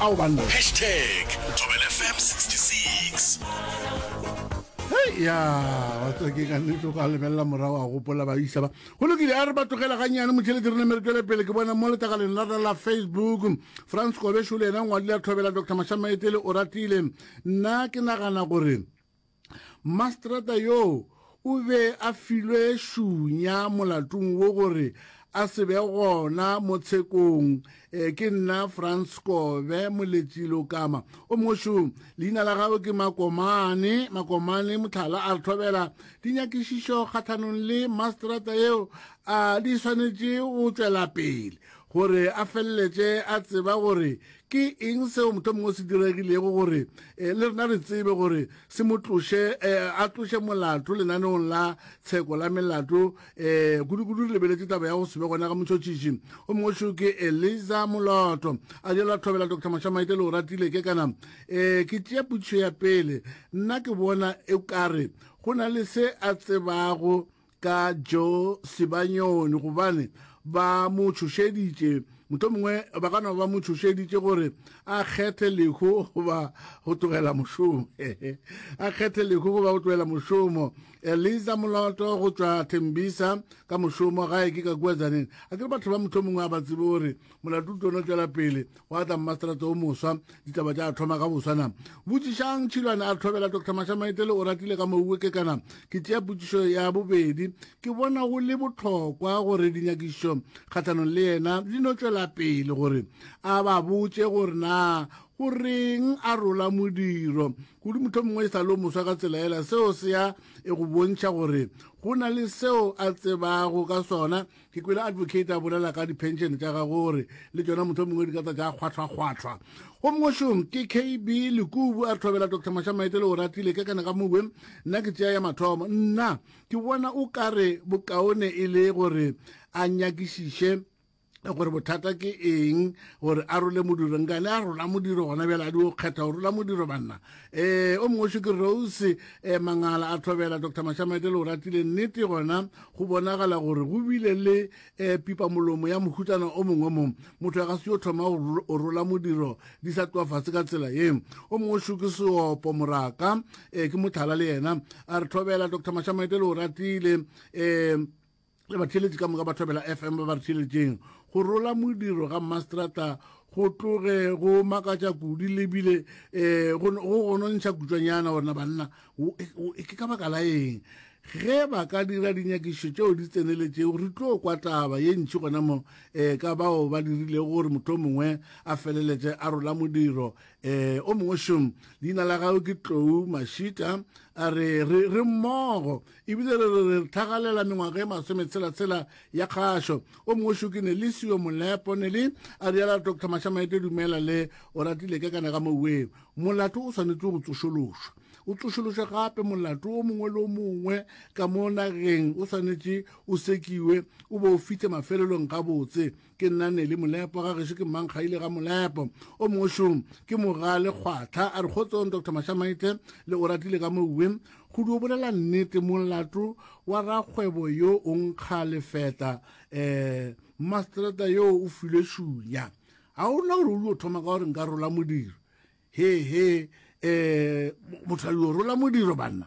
ao banna. Hashtag ThobelFM 66. Hei ya wa tswa ke ka nnete go a lebelela morago a gopola ba isa ba go lokile a re ba tlogela gannyane motšhelete re neme re tšwele pele ke bona mo letagaleng la la facebook france kobešo le ena ngwadi la thobela dr mashamaetele o ratile nna ke nagana gore Mmaseterata yoo o be a filwe šunya molatung wo gore a se be gona mo tshekong. E, ke nna Franz Kobe Moletši Lokama. O mošo, leina la gago ke Makomane. Makomane Motlhala a re thobela dinyakišišo kgatlhanong le masterata yeo a di swanetše go tšwela pele gore a feleletše a tseba gore Ke eng seo mohlomongwe o se diregilego gore eh, le rena re tsebe gore se mo tloše eh, a tloše molato lenaneong la tsheko la melato eh, kudu-kudu re lebeletse taba ya go sebe gona ga motšhotšhiši o mongwe šo ke eliza moloto a jalo a thobela dr mashamaite le o ratile ke kana eh, ke tšea putšo ya pele nna ke bona e kare go na le se a tsebago ka jo sebanyoni gobane ba mo tšhošeditše mohlomongwe ba ka no ba mo tšhošeditše gore a kgethe lehu goba go tlogela mošomo a kgethe lehu goba go tlogela mošomo eliza moloto go tšwa thembisa ka mošomo gae ke ka kua tsaneng a ke re batho ba mohlomongwe a ba tsebe gore molato o tlono tšwela pele wa tla mmaseterata o moswa ditaba tša thoma ka boswana botšišang tšhilwane a tlhobela dr mashamaetele o ratile ka mouwe ke kana ke tšea potšišo ya bobedi ke bona go le bohlokwa gore dinyakišo kgatlhanong le yena di no tšwela pele gore a ba botše gore na go reng a rola modiro kudu motho mongwe e sa lo moswa ka tsela ela seo se ya e go bontšha gore go na le seo a tsebago ka sona ke kwele advocate a bolela ka dipension tša ga gore le tšona motho o mongwe di ka tsa tša kgwatlhwakgwatlhwa go mongwešong ke kb lekubu a thobela dr mashamaete le o ratile ka kana ka mowe nna ke tšea ya mathomo nna ke bona o kare bokaone e le gore a nyakišiše gore bothata ke eng gore a role modiro nkane a rola modiro gona bjale a di o kgetha go rola modiro banna ee o mongwe ke rose um mangala a tlhobela dr mashamete le o ratile nnete gona go bonagala gore go bile le um pipamolomo ya mohutsana o mongwe mo motho ya ka se yo thoma o rola modiro di sa tloa fase ka tsela ye o mongwe ke seopo moraka um ke mothala le yena a re tlhobela dr mashamete le o ratile um le batheeletši ka moka ba thobela fm ba ba re theeletšeng go rola modiro ga mastrata go tloge go makatša kudi lebile um eh, go gonontšha kutswanyana gorena banna e ke ka baka la eng ge ba ka dira dinyakišo tšeo di tseneletšego re tlo kwa taba ye ntši gona mo um ka bao ba dirilego gore motho o mongwe a feleletse a rola modiro um o mongwe šom leina la gago ke tlou mashita a re re mmogo Ebile re re re tlhagalela mengwaga e masometshela-tshela ya kgašo. O mongwe šo ke Nelisi yo molepo, Neli, a riala Doctor Mashamaete Dumela le o ratile ke kana ka moweng. Molato o swanetše go tsošološwa. O tsošološwa gape molato o mongwe le o mongwe ka mo nageng o swanetše o sekiwe o bo o fihle mafelelong gabotse. ke nna nele molepo ga gešo ke mmankgaile ga molepo o mongwe šong ke moga le kgwatlha a re kgotsong dr mashamaite le o ratile ka mouwe go di o bolela nnete molato wa rakgwebo yo o nkga lefeta um masterata yo o filwe šunya ga o na gore o dio thoma ka gore nka rola modiro he he um motho a dio rola modiro banna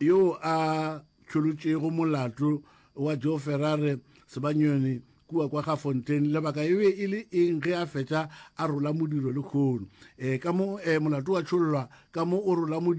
yo a tšholotšego molato wa joe ferrare sebanyoni kua kwa ga fontain lebaka e be e le eng ge a fetša a rola modiro le kgono um ka mo um molato wa tšhollwa ka mo o rola modiro